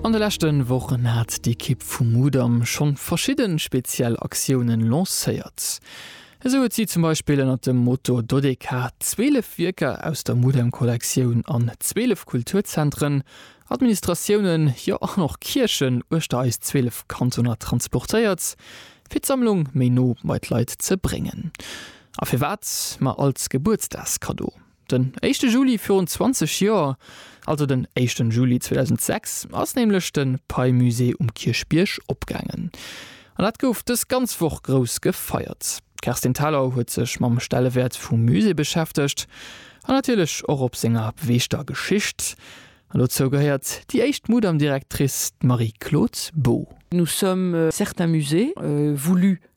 An de leschte Wochen hat d'Ekipp vu Mudam schonn verschidde speziell Aktiounen lancéiert. Esou huet si zum Beispill ënnert dem Motto Dodeka 12 Wierker aus der Mudam Kollektioun an 12 Kulturzentren, Administratiounen, jo an och Kierchen uechter eis 12 Kantoner transportéiert, fir d'Sammlung méi no bei d'Leit ze bréngen. A firwat? Ma als Gebuertsdagskaddo. Den éischte Juli virun 20 Joer, also den éischten Juli 2006, ass nämlech de Pei-Musée um Kierchbierg opgaangen. An dat gouf dës ganz Woch grouss gefeiert. D'Kerstin Thalau huet sech mam Stellewäert vum Musée beschäftegt an natierlech och op senger beweegter Geschicht. An dozou gehéiert déi éischt Mudam-Directrice, d'Marie-Claude Boo. Nous sommes certains musées, voulus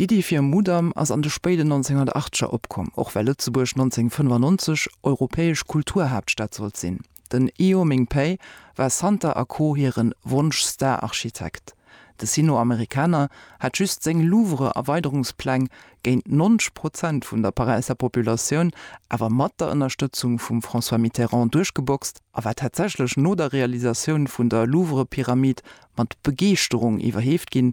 D'Iddi fir e Mudam ass an de spéiden 1980er opkomm, och well Lëtzebuerg 1995 europäesch Kulturhaaptstad sollt sinn. Den Io Ming Pei war Santa a Co. Hire Wonsch-Star-Architekt. De Sino-Amerikaner hat just seng Louvre-Erweiderungspläng géint 90 Prozent vun der Paräisser Populatioun, awer mat der Ënnerstëtzung vum François Mitterrand, duerchgeboxt a war tatsächlech no der Realisatioun vun der Louvre-Pyramid mat Begeeschterung iwwerheeft ginn,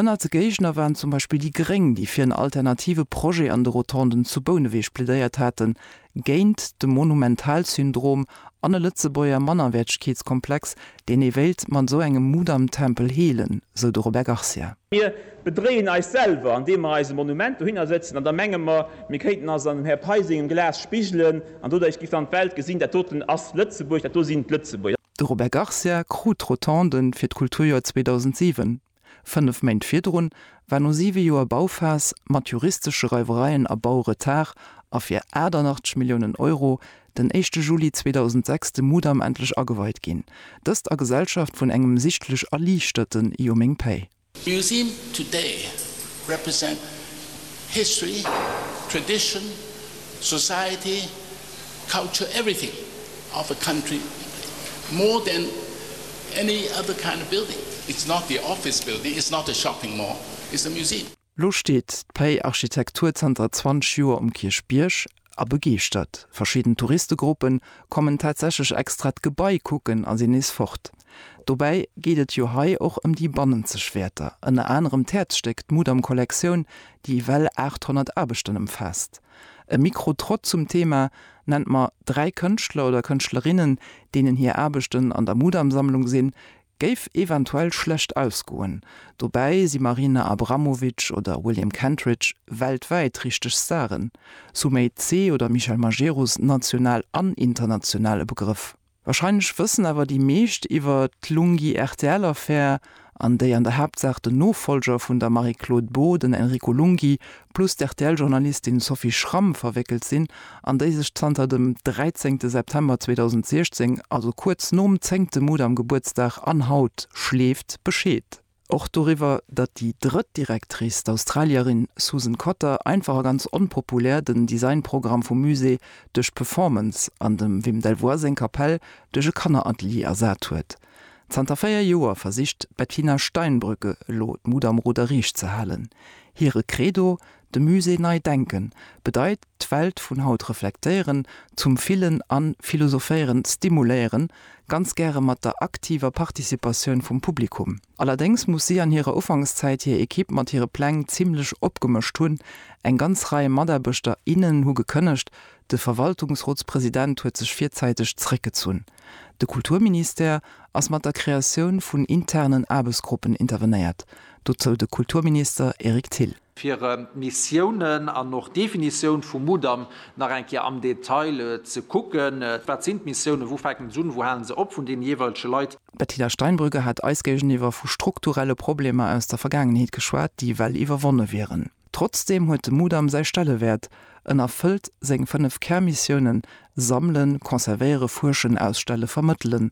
Ënnert de Géigner waren zum Beispill déi Gréng, déi fir en alternative Projet an de Rotonden zu Bouneweg plädéiert haten, géint de Monumentalsyndrom an e Lëtzebuerger Mannerwäertegkeetskomplex, deen ee wéilt mat esou engem Mudamtempel heelen, sou de Robert Garcia. Mir bedréien eis selwer, andeem mer eis e Monument dohinner sëtzen an da menge mer, mir kéinten eis an dem Här Pei sengem Glas spigelen an doduerch géif dann d'Welt gesinn, dat doten ass Lëtzebuerg, dat do sinn d'Lëtzebuerger. De Robert Garcia krut d'Rotonden fir d'Kulturjoer 2007. Fënnef Méint virdrun war no siwe Joer Bauphas, mat juristesche Reiwereien a Bauretard a fir 88 Milliounen Euro, den éischte Juli 2006 de Mudam endlech ageweit ginn. Dëst a Gesellschaft vun engem sichtlech erliichterten Io meng Päi! Museum today represent history, tradition, society. Culture everything of a country more than any other kind of building. It's not the office building, it's not a shopping mall, it's a museum. Lo steet d'Pei Architektur zanter 20 Joer um Kierchbierg a begeeschtert. Verschidden Touristegruppe kommen tatsächlech extra d'Gebai kucken a sinn nees fort. Dobäi geet et jo hei och ëm déi bannenzeg Wäerter, ënner anerem d'Häerzstéck, d'Mudam-Kollektioun, déi ewell 800 Aarbechten ëmfaasst. E Mikrotrott zum Thema Nennt mer dräi Kënschtler oder Kënschtlerinnen, deenen hir Aarbechten an der Mudam-Sammlung sinn, géif eventuell schlecht ausgoen. Dobäi si Marina Abramovic oder William Kentridge weltwäit richteg Staren, Sumay Tse oder Michel Majerus national an international e Begrëff. Wahrscheinlech wëssen awer déi meescht iwwer d'Lunghi-RTL-Affär, an déi an der Haaptsaach den Nofollger vun der Marie-Claude Beaud, den Enrico Lunghi, plus d'RTL-Journalistin Sophie Schramm verwéckelt sinn, an déi sech zanter dem 13 September 2016, also kuerz nom zéngte Mudam-Gebuertsdag an haut, schleeft Bescheed. Och doriwwer, datt déi drëtt Directrice, d'Australierin Susan Cotter, einfach a ganz onpopulär den Designprogramm vum Musée duerch d'Performance an dem Wim Delvoye seng Kapell duerch e Kanneratelier ersat huet. Zanter véier Joer versicht d'Bettina Steinbrügge elo d'Mut am Ruder riicht ze halen. Hire Credo, De Musée nei denken bedeit d'Welt vun haut reflektéieren, zum Fillen an Philosophéieren stimuléieren, ganz gäre mat der aktiver Participatioun vum Publikum. Allerdéngs muss si an hirer Ufankszäit hir Ekipp mat hire Pläng zimmlech opgemëscht hunn. Eng ganz Rei Mataarbechter, innen hu gekënnegt, de Verwaltungsrotspresident huet sech virzäiteg zeréckgezunn. De Kulturministère ass mat der Kreatioun vun internen Aarbechtsgruppen intervenéiert, dozou de Kulturminister Eric Thill. fir Missiounen an och d'Definitioun vum Mudam nach eng Kéier am Detail ze kucken, wat sinn d'Missiounen, wou fänken se un, wou halen se op, vun deene jeeweilege Leit. D'Bettina Steinbrügge hat eis géigeniwwer vu strukturelle Problemer aus der Vergaangenheet geschwat, déi well iwwerwonne wieren. Trotzdeem huet de Mudam säi Stellewäert, en erfëllt seng fënnef Kärmissiounen, Sammelen, Conservéiere, Fuerschen, Ausstelle, Vermëttelen,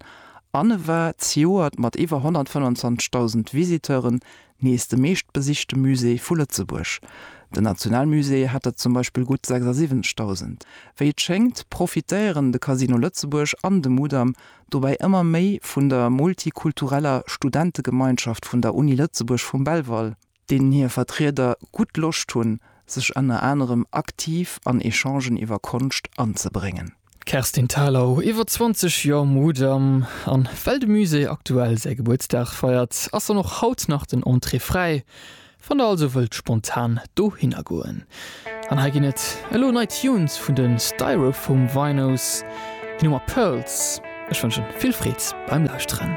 an e war zejoert mat iwwer 125.000 Visiteuren Nees de meeschtbesichte Musée vu Lëtzebuerg. Den Nationalmusée hat der zum Beispill gutt 76.000. Wéi et schéngt, profitéieren de Casino Lëtzebuerg an de Mudam dobäi ëmmer méi vun der multikultureller Studentegemeinschaft vun der Uni Lëtzebuerg vum Belval, deenen hir Vertrieder gutt Loscht hunn, sech ënner anerem aktiv an Echangen iwwer Konscht anzebréngen. D'Kerstin Thalau, iwwer 20 Joer Mudam, an well de Musée aktuell säi Gebuertsdag feiert, ass dann och haut nach den Entrée fräi. Wann der also wëllt spontan dohinner goen. An hei ginn et elo nei Tunes vun de Styrofoam Vinos, déi Nummer Pearls. Ech wënschen vill Freed beim Lauschteren.